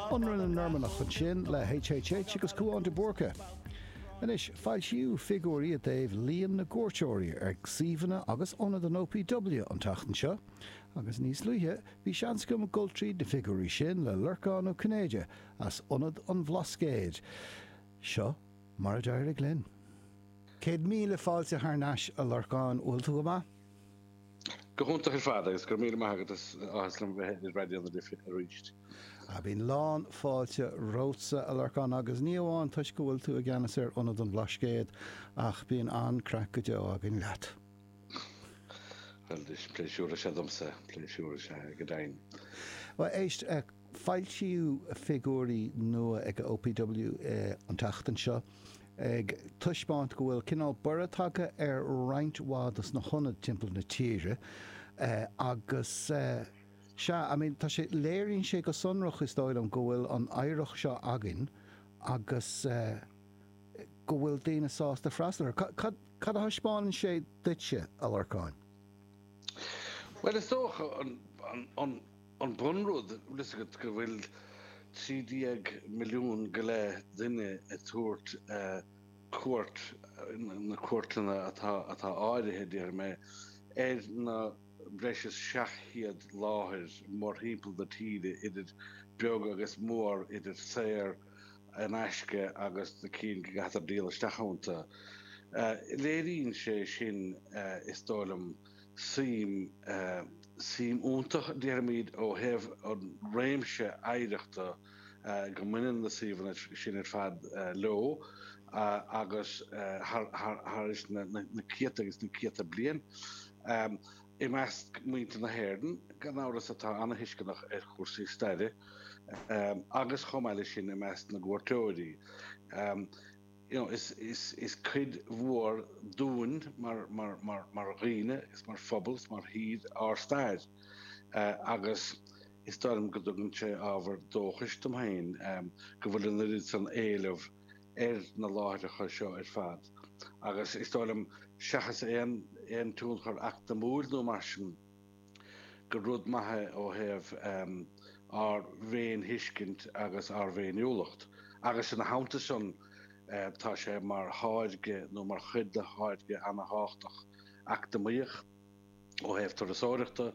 Ionradh na Normannach ansin le HHH agus Cúán de Búrca. Anois foilsíodh figiúirí i dtaobh líon na gcuairteoirí ar suíomhanna agus ionad an OPW an tseachtain seo agus níos luaithe bhí seans agam dul tríd na figiúirí sin le Lorcán Ó Cinnéide as Ionad an Bhlascaeid. Seo mar a d'éirigh linn. Céad míle fáilte thar n-ais a Lorcáin, bhfuil tú go maith? Go hiontach ar fad agus go raibh míle maith agat, is áthas liom bheith ar Raidió na Life arís. Bíonn lán fáilte romhatsa, a Lorcán, agus ní amháin toisc go bhfuil tú i gceannas ar Ionad an Bhlascaod, ach bíonn an-craic go deo againn leat. Bhuel, is pléisiúr is ea domsa, pléisiúr is ea dúinn. Bhuel, éist. Foilsíodh figiúirí nua ag OPW an tseachtain seo ag taispeáint go bhfuil cineál borradh tagtha ar roinnt mhaith dos na hionaid timpeall na tíre agus sea, I mean tá sé, léiríonn sé go sonrach is dóigh liom go bhfuil an oidhreacht seo againn agus go bhfuil daoine sásta freastal air. Cad, cad a thaispeánann sé duitse, a Lorcáin? Bhuel is dócha an, an, an. An bunrud, tá a fhios agat, go bhfuil 13 milliún go leith duine ag tabhairt cuairt, na cuairteanna atá áirimhthe, déarfaidh mé, ar na breis is 700 láthair mórthimpeall na tíre, idir beag agus mór, idir saor in aisce agus na cinn go gcaitear díol isteach iontu. Léiríonn sé sin, is dóigh liom, suim, suim iontach déarfaimid ó thaobh an réimse oidhreachta go mbaineann na suíomhanna sin ar fad leo agus thar na céadta agus na céadta bliain i measc muintir na hÉireann gan amhras atá an-thuisceanach ar chúrsaí staire agus chomh maith leis sin i measc na gcuairteoirí. You know, is cuid mhór dúinn mar dhaoine is mar phobal is mar thír ár stair agus is dóigh liom go dtugann sé ábhar dóchais dom féin go bhfuil an oiread san éileamh ar na láithreacha seo ar fad agus is dóigh liom seachas aon tionchar eacnamíoch nó mar sin, gur rud maith é ó thaobh ár bhféinthuiscint agus ár bhféiniúlacht, agus ina theannta sin tá sé mar tháirge nó mar chuid de tháirge an-tábhachtach eacnamaíoch ó thaobh turasóireachta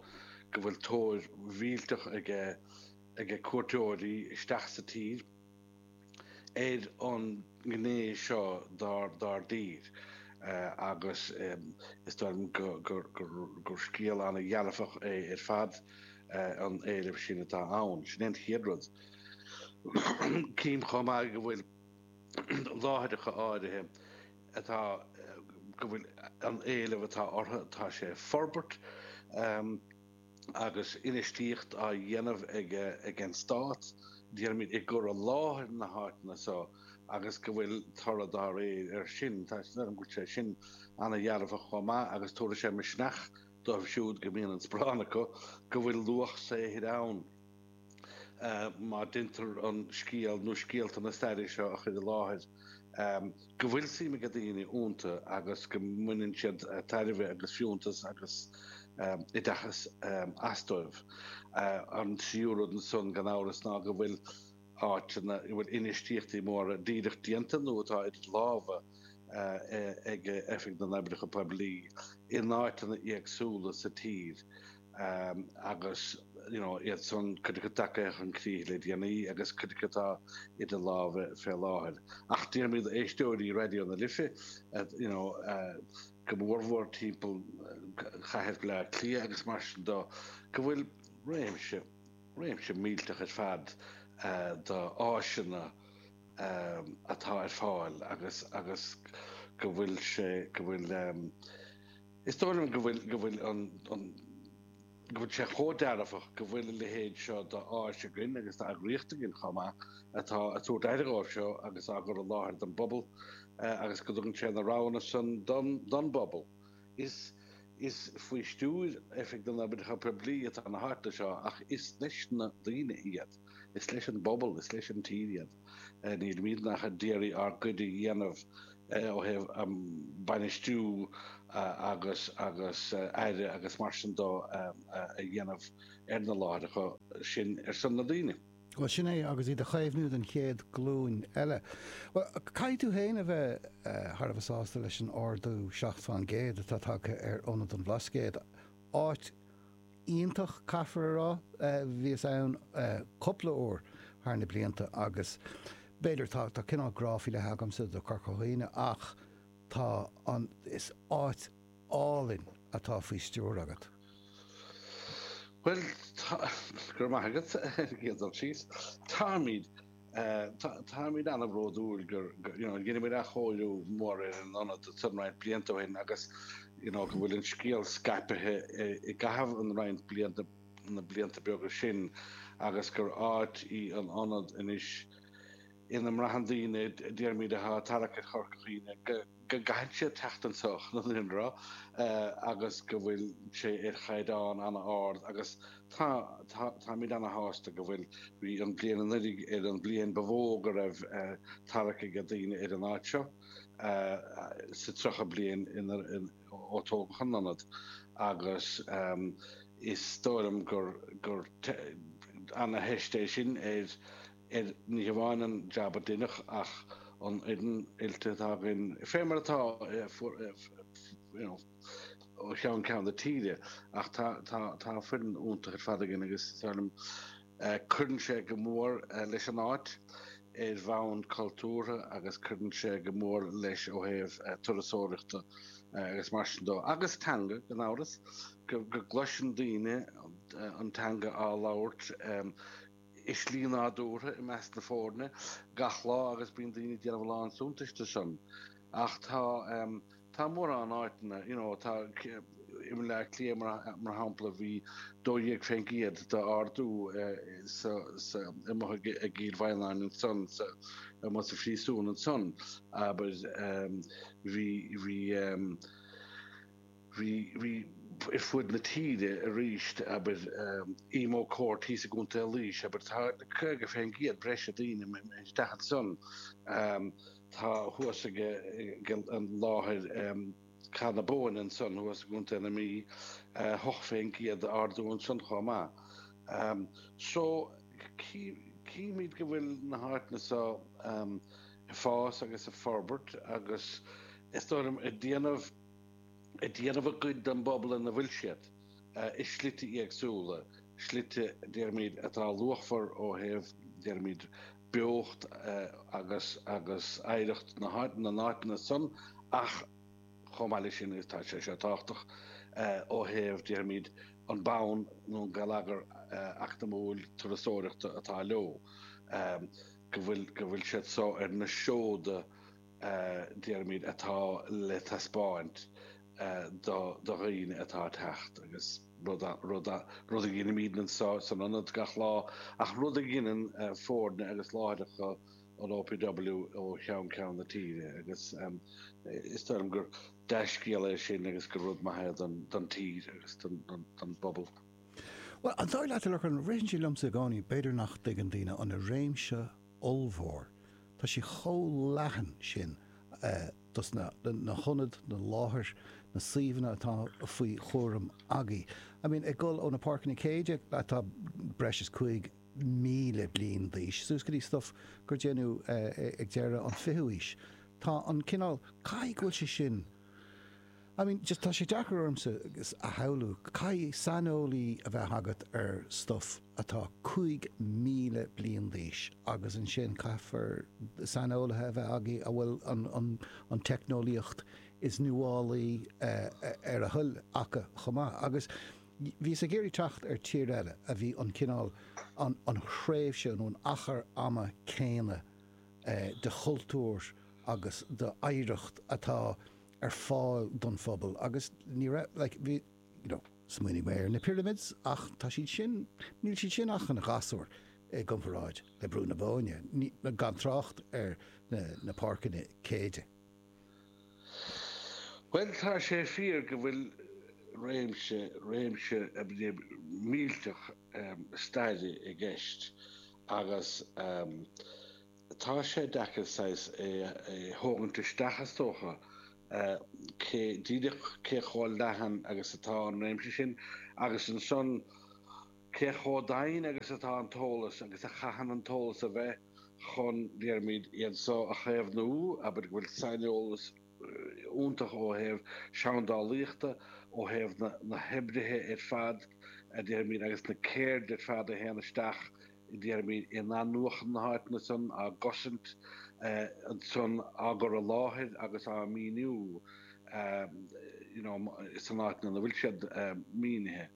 go bhfuil tóir mhillteach aige cuairteoirí isteach sa tír. ar an ngné seo dár dtír agus is dóigh liom gur scéal an-dhearfach é ar fad an éileamh sin atá ann. Sin é an chéad rud. Cím chomh maith go bhfuil láithreacha áirithe ann go bhfuil an éileamh atá orthu tá sé ag forbairt. Agus infheistíocht á dhéanamh ag an Stát, déarfaimis, i gcur i láthair na háiteanna seo agus go bhfuil toradh dá réir air sin. Tá 'fhios agam go bhfuil sé sin an-dearfach chomh maith agus tabharfaidh sé misneach dóibh siúd go mbíonn an sparán acu go bhfuil luach saothair ann. má deintear an scéal nó scéalta na staire seo a chur i láthair, go bhfuil suim ag daoine ionta agus go mbaineann siad tairbhe agus fiúntas agus oideachas astu. An tríú rud ansan, gan amhras, ná go bhfuil áiteanna ina bhfuil infheistíochtaí móra díreach déanta nó atá idir lámha ag Oifig na nOibreacha Poiblí in áiteanna éagsúla sa tír. agus iadsan cuid acu tagtha chun críche le déanaí agus cuid acu atá idir lámha fé láthair. Ach déarfaimis éisteoirí Raidió na Life go mórmhór timpeall chathair Bhleá Cliath agus mar sin dó go bhfuil réimse, réimse millteach ar fad d'áiseanna atá ar fáil agus go bhfuil sé, go bhfuil. Is dóigh liom go bhfuil go bhfuil an an go bhfuil sé chomh dearfach go bhfuil a leithéid seo d'áis againn agus d'eagraíocht againn chomh maith atá ag tabhairt aire dhóibh seo agus á gcur i láthair don bpobal agus go dtugann sé na roghanna san don don bpobal. Is is faoi stiúir Oifig na nOibreacha Poiblí atá na háiteanna seo ach is leis na daoine iad. Is leis an bpobal, is leis an tír iad. Nílimidne ach a d'iarraidh ár gcuid a dhéanamh ó thaobh bainistiú agus agus aire agus mar sin dó a dhéanamh ar na láithreacha sin ar son na ndaoine. Bhuel sin é agus iad a chaomhnú don chéad glúin eile. Bhuel caithfidh tú féin a bheith thar a bheith sásta leis an ardú seacht fán gcéad atá tagtha ar ionad an Bhlascaoid, áit, iontach caithfear a rá. Bhíos ann cúpla uair thar na blianta agus b'fhéidir tá cineál grá faoi leith agamsa do Chorca Dhuibhne ach tá an, is áit álainn atá faoi stiúir agat. Bhuel, tá, go raibh maith agat, ag iarraidh dul síos. Táimid. Táimid an-bhródúil gur dhein muid athchóiriú mór ar an ionad san roinnt blianta ó shin agus go bhfuil an scéal scaipthe i gcaitheamh an roinnt blianta na blianta beaga sin agus gur áit í an ionad anois ina mbraitheann daoine déarfaimid atá ag tarrac ar Chorca Dhuibhne go go gcaitheann siad teacht anso chun an ionaid agus go bhfuil sé ar chaighdeán an-ard agus táimid an-shásta go bhfuil. Bhí an bhliain anuiridh ar an bhliain ba mhó go raibh tarrac ag daoine ar an áit seo sa tríocha bliain ó tógadh an ionad agus is dóigh liom gur an-theist é sin ar ar ní hamháin an jab a deineadh ach an fhoireann oilte atá againn fé mar atá ó cheann ceann na tíre ach tá foireann iontach ar fad againn agus is dóigh liom cuireann sé go mór leis an áit ar bhonn cultúrtha agus cuireann sé go mór leis ó thaobh turasóireachta agus mar sin dó agus teanga gan amhras go gcloiseann daoine an teanga á labhairt i slí nádúrtha i measc na foirne gach lá agus bíonn daoine ag déanamh a lán suntais de san. Ach tá tá mórán áiteanna, you know, tá i mBaile Átha Cliath mar shampla bhí 12% d'ardú sa sa amuigh i gCill Mhaighneann ansan sa amuigh sa phríosún ansan abair bhí bhí Bhí ar fuaid na tíre arís, abair, Emo Court thíos i gContae Laois, abair, tá 50% breise daoine isteach ansan. Tá thuas ag an láthair Cath na Bóinne ansan thuas i gContae na Mí, 8% d'ardú ansan chomh maith. So, chímid go bhfuil na háiteanna so ag fás agus ag forbairt agus is dóigh liom ag déanamh, ag déanamh a gcuid den bpobal ina bhfuil siad, i slite éagsúla, slite, déarfaimid, atá luachmhar ó thaobh, déarfaimid, beocht agus agus oidhreacht na n-áiteanna san ach chomh maith leis sin tá sé seo tábhachtach ó thaobh, déarfaimid, an bonn nó an geilleagar eacnamúil turasóireachta atá leo, go bhfuil siad so ar na seoda. déarfaimid atá le taispeáint do dhaoine atá ag teacht agus rud a dheinimíd anseo san ionad gach lá ach rud a dheineann foirne agus láithreacha an OPW ó cheann ceann na tíre agus is dóigh liom gur dea-scéal é sin agus gur rud maith é don tír agus don bpobal. Bhuel, an dóigh leat a Lorcáin, ritheann sé liomsa i gcónaí b'fhéidir nach dtuigeann daoine an réimse ollmhór. Tá sé chomh leathan sin dos na na hionad, na láthair, na suíomhanna atá faoi chúram agaibh. I mean ag dul ó na páirceanna Céide atá breis is 5,000 bliain d'aois suas go dtí stuff a déanadh ag deireadh an 20ú aois. Tá an cineál, caithfidh go bhfuil sé sin. I mean, just tá sé deacair ormsa a shamhlú, caithfidh saineolaí a bheith agat ar stuff atá 5,000 bliain d'aois agus ansin caithfear saineolaithe a bheith agat a bhfuil an teicneolaíocht is nuálaí ar a dtoil acu chomh maith. Agus bhíos ag iarraidh teacht ar tír eile a bhí an cineál, an thréimhse nó an achar ama céanna de chultúr agus d'oidhreacht atá, ar fáil don phobal agus ní raibh like bhí you know smaoinigh mé ar na pyramids ach tá siad sin níl siad sin ach ina ngasúir i gcomparáid le Brú na Bóinne gan trácht ar na na páirceanna Céide. Bhuel tá sé fíor go bhfuil réimse réimse millteach staire i gceist agus Tá sé deacair saghas é a thógaint isteach is dócha, cé díreach cé chomh leathan agus atá an réimse sin agus ansan cé chomh doimhin agus atá an t-eolas agus a chaitheann an t-eolas a bheith chun, déarfaimid, iad so a chaomhnú, abair go bhfuil saineolas iontach ó thaobh seandálaíochta, ó thaobh na hoibrithe ar fad déarfaimid agus na ceirdeanna ar fad a théann isteach i déarfaimid in athnuachan na háiteanna san, á gcosaint san, á gcur i láthair agus á maoiniú you know sna háiteanna ina bhfuil siad maoinithe.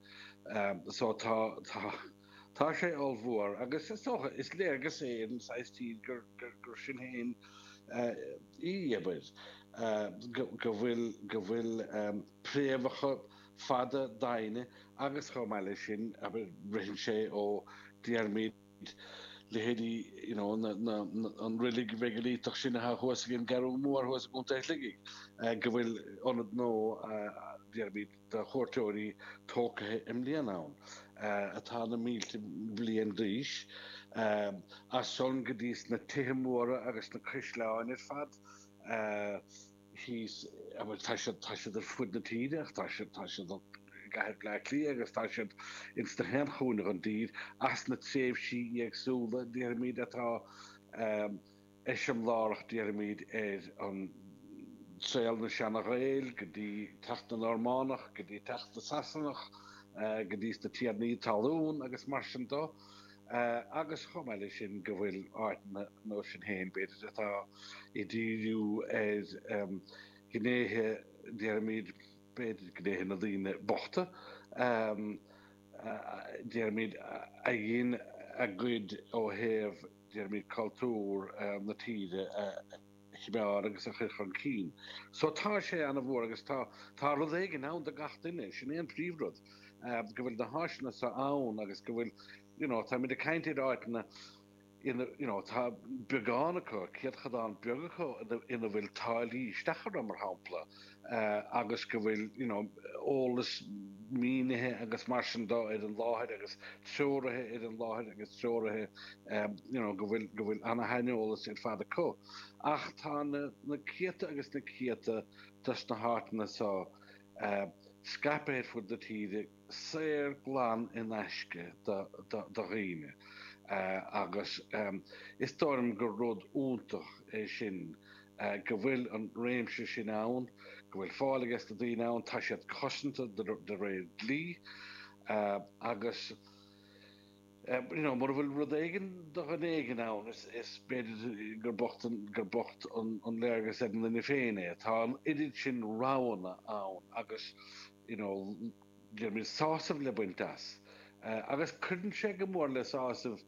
So tá, tá. Tá sé ollmhór agus is dócha, is léargas é ar an saghas tír gur sinn féin í, abair, go bhfuil préamhacha fada doimhne agus chomh maith leis sin, abair, ritheann sé ó déarfaimid leithéidí, you know, an reilig mheigiliteach sin atá thuas ag an gCeathrú Mhór thuas i gContae Shligigh, go bhfuil ionad nua déarfaimid. do chuairteoirí tógtha i mbliana ann atá na mílte bliain d'aois, as san go dtí na tithe móra agus na caisleáin ar fad thíos, tá siad ar fud na tíre ach tá siad i gcathair Bhleá Cliath agus tá siad ins gach aon chúinne den dtír as na tréimhsí éagsúla, déarfaimid, atá. eiseamlárach déarfaimíd ar an saol na seana-Ghaeil go dtí teacht na Normánach go dtí teacht na Sasanach go dtí na tiarnaí talún agus mar sin do agus chomh maith le sin go bhfuil áiteanna nó sin féin b'fhéidir atá ag díriú ar ghnéithe déarfaimíd b'fhéidir gnéithe na daoine bochta. Déarfaimid a dhein a gcuid ó thaobh déarfaimid cultúr na tíre a chimeád agus a chuir chun cinn. So tá sé ana mhór agus tá tá rud éigin ann do gach duine, sin é an príomhrud, go bhfuil na háiseanna so ann agus go bhfuil you know, táimid ag caint ar áiteanna, Tá beagán acu, céadchadán beag acu ina bhfuil táillí isteach orthu, mar shampla, agus go bhfuil eolas mínithe agus mar sin de ar an láthair agus treoraithe ar an láthair agus treoraithe go bhfuil an-shaineolas ar fad acu. Ach tá na céadta agus na céadta de sna háiteanna seo scaipthe ar fud na tíre. saor glan in aisce do dhaoine agus is dóigh liom gur rud iontach é sin go bhfuil an réimse sin ann, go bhfuil fáil aige sna daoine ann, tá siad cosanta de réir dlí agus. you know, mura bhfuil rud éigin do dhuine éigin ann, is, is b'fhéidir gur bocht an, gur bocht an, an léargas ar an duine féin é. Tá an oiread sin roghanna ann agus you know, déarfaimid sásamh le baint as. Eh, agus cuireann sé go mór le sásamh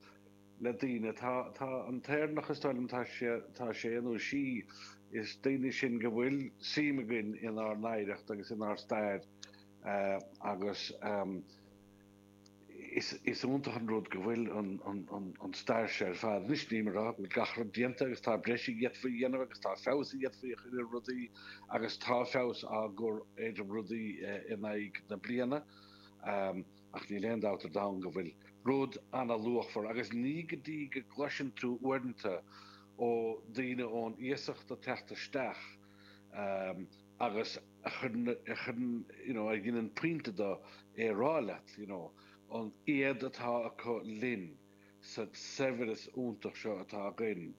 le daoine. Tá, tá an tÉireannach is dóigh liom tá sé, tá sé nó sí is daoine sinn go bhfuil suim againn inár n-oidhreacht agus inár stair eh, agus ehm, Is iontach an rud go bhfuil an stair seo ar fad anois, níl mé a rá go bhfuil gach rud déanta agus tá breis a d'fhéadfaí a dhéanamh agus tá feabhas a d'fhéadfaí a chur ar rudaí agus tá feabhas á gcur ar rudaí in aghaidh na bliana ach níl aon dabht ar domhan go bhfuil rud an-luachmhar agus ní go dtí go gcloiseann tú uaireanta ó dhaoine ón iasacht ag teacht isteach agus a chuireann, a chuireann, you know, a dhineann pointe de é a rá leat, you know, an éad atá acu linn sa saibhreas iontach seo atá againn.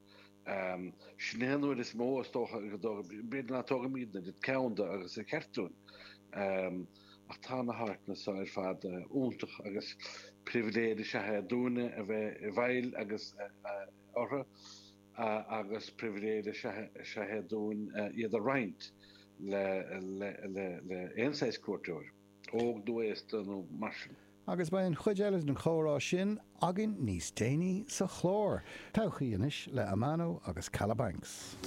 Sin é an rud is mó, is dócha, go dtóg, b'fhéidir nach dtógaimid an oiread ceann de agus ba cheart dúinn, ach tá na háiteanna seo ar fad iontach agus pribhléid is ea é dúinne a bheith i bhfeighil agus orthu. agus pribhléid is ea é dúinn iad a roinnt le aon saghas cuairteoir, óg nó aosta nó mar sin. Agus beidh an chuid eile den chomhrá sin againn níos déanaí sa chlár. Todhchaí Anois le Amano agus Kalabanx.